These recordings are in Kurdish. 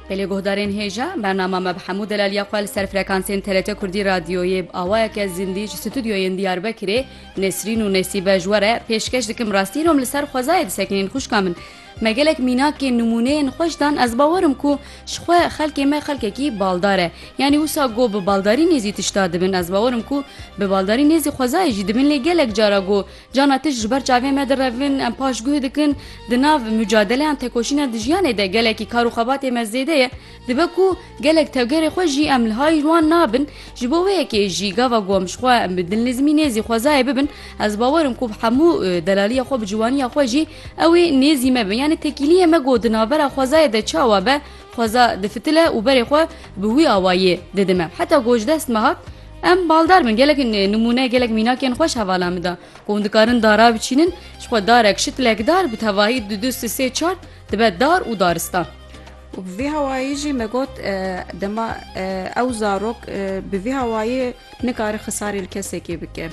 Bi lê guhdarên hêja, bernama me bi hemû delaliya xwe li ser frekansên TRT Kurdî Radyoyê bi awayeke zindî ji stûdyoyên Diyarbekirê Nesrîn û Nesîbe ji we re pêşkeş dikim rastî nom li ser xwezayê disekinên xwişka min. Me gelek mînakên nimûneyên xweş dan ez bawer im ku ji xwe xelkê me xelkekî baldar e. Yanî wisa got bi baldarî nêzî tişta dibin ez bawer im ku bi baldarî nêzî xwezayê jî dibin lê gelek cara got Cana tişt ji ber çavên me direvin, em paş guh dikin, di nav mucadeleyan tekoşîna di jiyanê de gelekî kar û xebatê me zêde ye, dibe ku gelek tevgerê xwe jî em li hay wan nabin, ji bo wê yekê jî gava ku em ji xwe bi dilnizmî nêzî xwezayê bibin, ez bawer im ku bi hemû delaliya xwe bi ciwaniya xwe jî ew ê nêzî me be. Yanî tekîliyê me ku di navbera xwezayê de çawa be, Xweza difitile û berê xwe bi wî awayî didime. Heta ku ji dest me hat, em baldar bin. Gelek nimûne, gelek mînakên xweş hevala min da. Ku hûn dikarin dara biçînin, ji xwe darek, şitlek dar bi tevahî du du si sê çar dibe dar û daristan. Û bi vî hawayî jî me got dema ew zarok bi vî hawayî nikare xisarê li kesekê bike.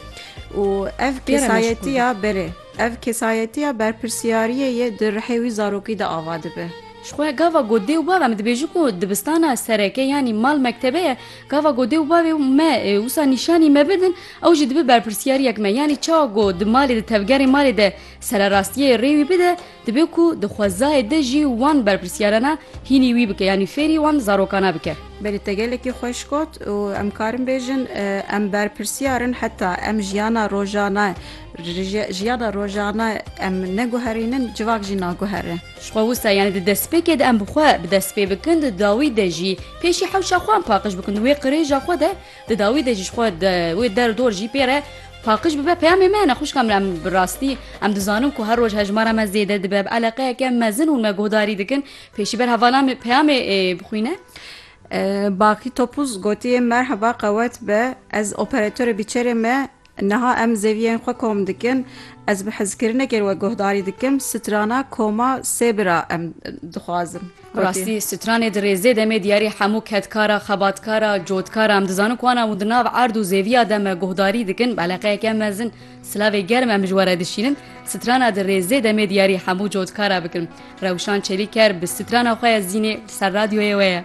Û ev kesayetiya berê, ev kesayetiya berpirsyariyê ye di rihê wî zarokî de ava dibe. Ji xwe ya gava got dê û bab em dibêjin ku dibistan a sereke yanî mal mektebe ye, gava got dê û bavê me wisa nîşanî me bidin ew jî dibe berpirsiyariyek me. Yanî çawa ku di malê di tevgerên malê de sererastiyê rê wî bide dibe ku di xwezayê de jî wan berpirsiyarana hînî wî bike yanî fêrî wan zarokana bike. Belê te gelekî xweş got û em karin bêjin em berpirsiyar in heta em jiyana rojane jiyana rojane em neguherînin civak jî naguhere. Ji xwe wisa yanî di destpêkê de em bi xwe bi dest pê bikin, di dawî de jî pêşî hewşa xwe em paqij bikin di wê qirêja xwe de, di dawî de jî ji xwe di wê der û dor jî pê re paqij bibe. Peyamê me hene xwişka min, em bi rastî em dizanin ku her roj hejmara me zêde dibe, bi eleqeyeke mezin hûn me guhdarî dikin. Pêşî ber hevala min peyamê bixwîne. Baqî Topuz gotiye, Merheba qewet be, ez operatorê bîçerê me Niha em zeviyên xwe kom dikin. Ez bi hizkirinekê we guhdarî dikim, strana koma sê bira em dixwazim. Bi rastî stranê di rêzê de me diyarî hemû kedkara, xebatkara, cotkara em dizanin ku wan hemû di nav erd û zêviya de me guhdarî dikin. Bi eleqeyeke mezin silavê germ em ji we re dişînin. Strana di rêzê de me diyarî hemû cotkara bikin. Rewşan Çelîker bi strana xwe ye Zînê li ser radyoyê we ye.